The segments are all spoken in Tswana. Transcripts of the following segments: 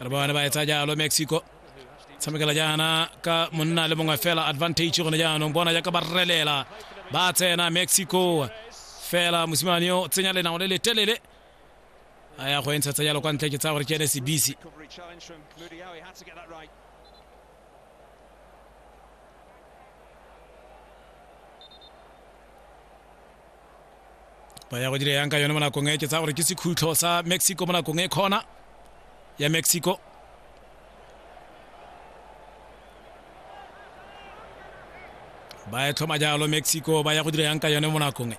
re bone ba etsa jalo mexico tshamekela jaana ka monna le mongwe fela advantage gone jaanong bona jaaka ba relela ba tsena mexico fela mosimane o tsenya lenao le letelele a ya go e ntshetsa jalo kwa ntle ke tsaya gore ke ene sebisi ba ya go dira yang ka yone mo nakong e ke tsaya gore ke sekhutlho sa mexico mo nakong e kgona ya mexico ba e tlhoma jalo mexico ba ya go dira yang ka yone mo nakong e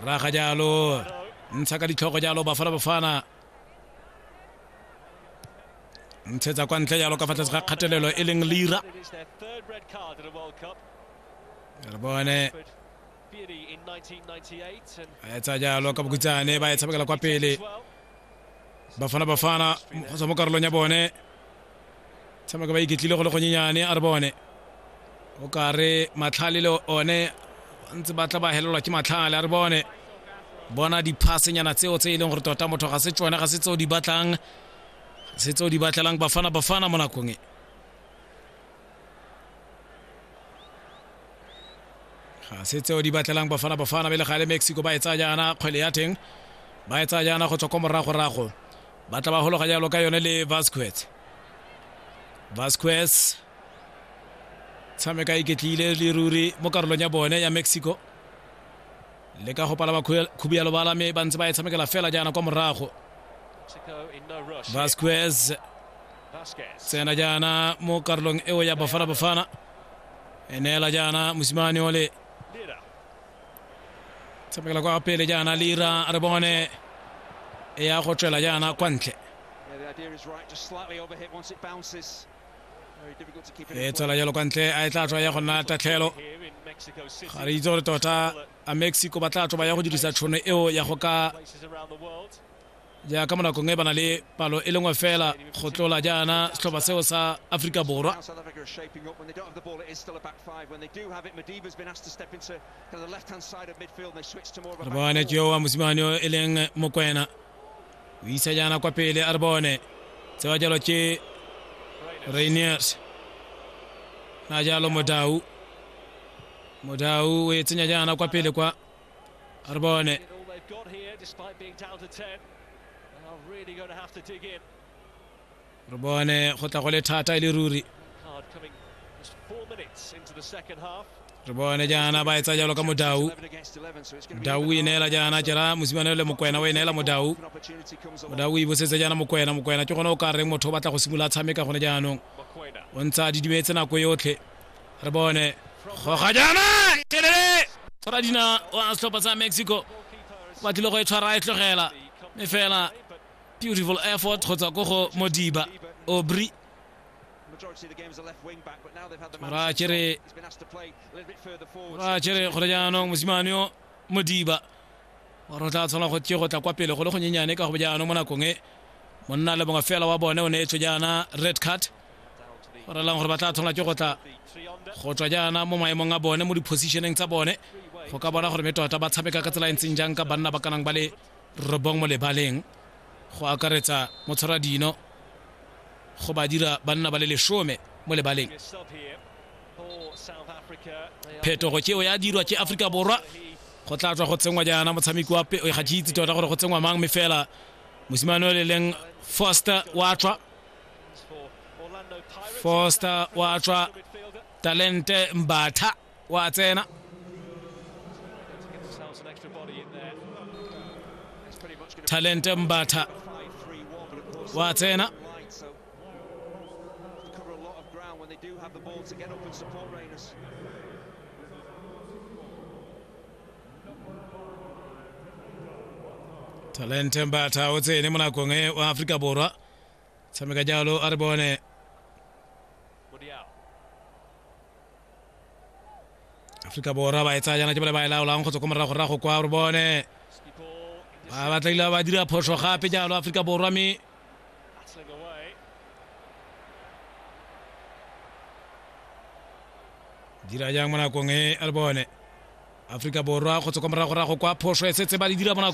raga jalo ntsha ka ditlhogo jalo bafana bafana ntshetsa kwa ntle jalo ka fa tlase ga kgatelelo e leng lira re bone a etsa jalo ka bokutsane ba e tshamekela kwa pele bafana bafana go tswa mo karolong ya bone tshameka ba iketlile go le gonyenyane a re bone o kare matlhale le one ntse ba tla ba helelwa ke matlhale a re bone bona diphasenyana tseo tse e leng gore tota motho ga se tsone ga se tseo di batlang se tseo di batlelang bafana bafana mo nakong e ga se tseo di batlelang bafana bafana bele ga le mexico ba e tsaya jaana kgwele ya teng ba e tsaya jaana go tswa kwa moragorago ba tla ba gologa jalo ka yone le vasquez vasquez tshameka iketlile le ruri mo karolong ya bone ya mexico le ka go pala ba khubialo bala mme ba ntse ba e tshamekela fela jaana kwa morago vasquez tsena jaana mo karolong eo ya bafana bafana e neela jaana mosimane ole tshamekela kwa pele jaana lira re bone e ya go tswela jaana kwa ntle e tswela jalo kwa ntle a e tla tswa ya go nna tatlhelo ga re itse gore tota a mexico ba tla tswa ba ya go dirisa tšhono eo ya go ka jaaka mo nakong e ba na le palo e lengwe fela go tlola jaana setlhopha seo sa aforika borwa re bone ke yo wa mosimane o e leng mokwena o isa jaana kwa pele a re bone tsewa jalo ke rainiers na jalo modau modau o e tsenya jaana kwa pele kwa Ar bá né. Re bone go tla go le thata e le ruri. re bone jaana ba etsa jalo ka modau modau o ineela jaana jera mosimane le mokwena o ineela modau modau o ibosetse jaana mokwena mokwena ke gone o ka reng motho o batla go simolola tshameka gone jaanong o ntsha didimetse nako yotlhe re bone goga jaana telele tshwara dina wa setlhopha sa mexico ba tlile go e tshwara e tlogela mme fela beautiful effort kgotsa ko go modiba obri ra kere ra kere gore jaanong mosimane yo modiba gore o tla tshwana go ke go tla kwa pele go le go nyenyane ka go jaanong mo nakong e monna le bongwe fela wa bone o ne e tswe jaana red card go relang gore ba tla tshwanela ke go tla go tswa jaana mo maemong a bone mo di-positioneng tsa bone go ka bona gore me tota ba tshameka ka tsela e ntseng jang ka banna ba kanang ba le robong mo lebaleng go akaretsa motshwara dino go ba dira banna ba le lesome mo lebaleng phetogo keo ya dirwa ke aforika borwa go tla tswa go tsenngwa jaana motshameki wa peo ga ke itse tota gore go tsenngwa mang me fela mosimane o le leng foster wa tswa foster wa tswa talente mbatha wa tsena talente mbatha wa tsena talente mbatha o tsene mo nakong e wa aforika borwa tshameka jalo a re bone aforika borwa ba e tsaya jana ke bale ba e laolang go tswa ko moragorago kwa re bone ba batlaile ba dira phoso gape jalo aforika borwa mme dira jang mo nakong e a re bone aforika borwa go tswa kwa moragorago kwa phoso e setse ba di dira mo nakong